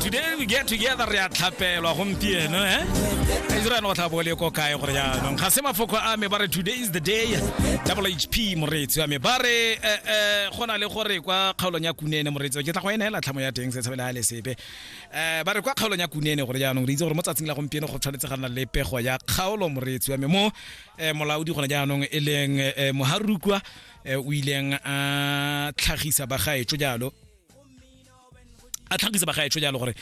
today we get together re a tlhapelwa gompieno eh israel o tlhabo le ko kae gore jaanong ga se mafoko a me ba re today is the day double hp moreetsi wa me ba re go na le gore kwa kgaolong ya kunene moreetsi wa ke tla go ena hela tlhamo ya teng se tshabela le sepe um ba re kwa kgaolong ya kunene gore jaanong re itse gore mo tsatsing la gompieno go tshwanetse ga nna le pego ya kgaolo moreetsi wa me mo molaodi gone jaanong e leng moharukwa eh, o ileng a tlhagisa bagaetsho jalo a tlhagisa bagaetsho jalo gore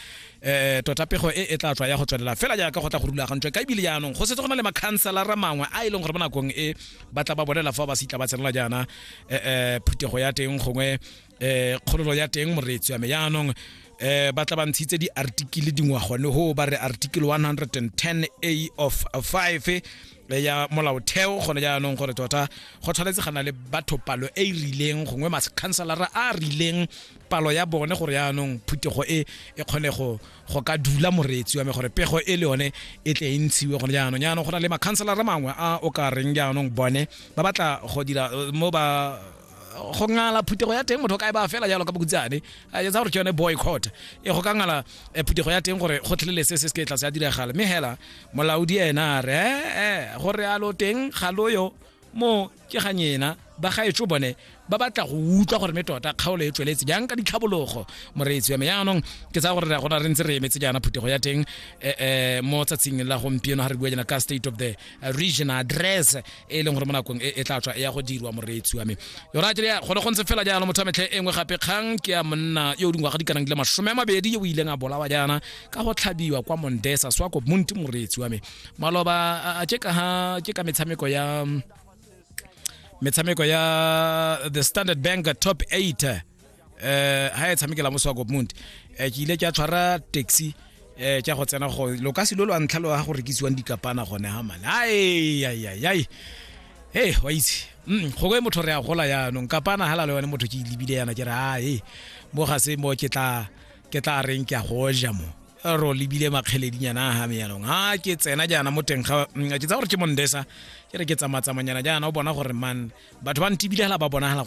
um tota pego e e tla tswa ya go tswelela fela jaaka go tla go rulagantswe ka ebile jaanong go setse go na le makhanselara mangwe a e leng gore mo nakong e ba tla ba bolela fa ba se itla ba tsenela jaana um phuthego ya teng gongwe um kgololo ya teng moreetsi ya me jaanong eh ba tla ba ntshitse di-artikele dingwa gone ho ba re article 110 a of 5 ya molaotheo gone jaanong gore tota go tshwanetse ga na le batho palo e e rileng gongwe makhanselara a a rileng palo ya bone gore jaanong phuthego e e kgone go go ka dula moreetsi wa me gore pego e le yone e tle e ntshiwe gone jaanong jaanong go na le makhanselara mangwe a o ka reng jaanong bone ba batla go dira eh, mo ba go ngala phuthego ya teng motho ka e ba fela jalo ka bokutsane a etsa gore ke yone boycott e go ka ngala eh, phuthego ya teng gore go tlelele se se se ke tlase ya diragala mme hela molaodi ena a re ee go realo teng ga loyo mo ke ga nyena ba gaetso bone ba batla go utlwa gore me tota kgaolo e tsweletse jang ka ditlhabologo moreetsi wa me yaanong ke tsaya gore re gona re ntse re emetse jaana phuthego ya teng um mo tsatsing la gompieno ga re bua jana ka state of the eh, region address e leng gore mo nakong e, e tla tswa e ya go dirwa moreetsi wa me yona tsele ya gone go ntse fela jaana motho wa metlhe e nngwe gape kgang ke ya monna yo o dingwaga di kanang di le masome a mabedi yo o ileng a bolawa jaana ka go tlhabiwa kwa mondesa swako monti moreetsi wa me maloba a ke ka ke ka metshameko ya metshameko ya the standard bank top 8 eh ha e tshamekela mo swako monti eh, ke ile ke a tshwara taxi eh tša go tsena go lo ka se lo lo ntlha lo ga go rekisiwang dikapana gone ha mane ai ai ai ai hey wa itse mm go go motho re a gola ya no kapana hala le yone motho ke libile yana ke re ha hey mo ga se mo ke tla ke tla reng ke a go ja mo ro lebile makgeledinyana a game yanong a ke tsena jaana mo teng ga mm, ke tsa gore ke mondesa ke re ke tsamatsamanyana jaana o bona gore man batho ba ntebile gela ba bonagala gore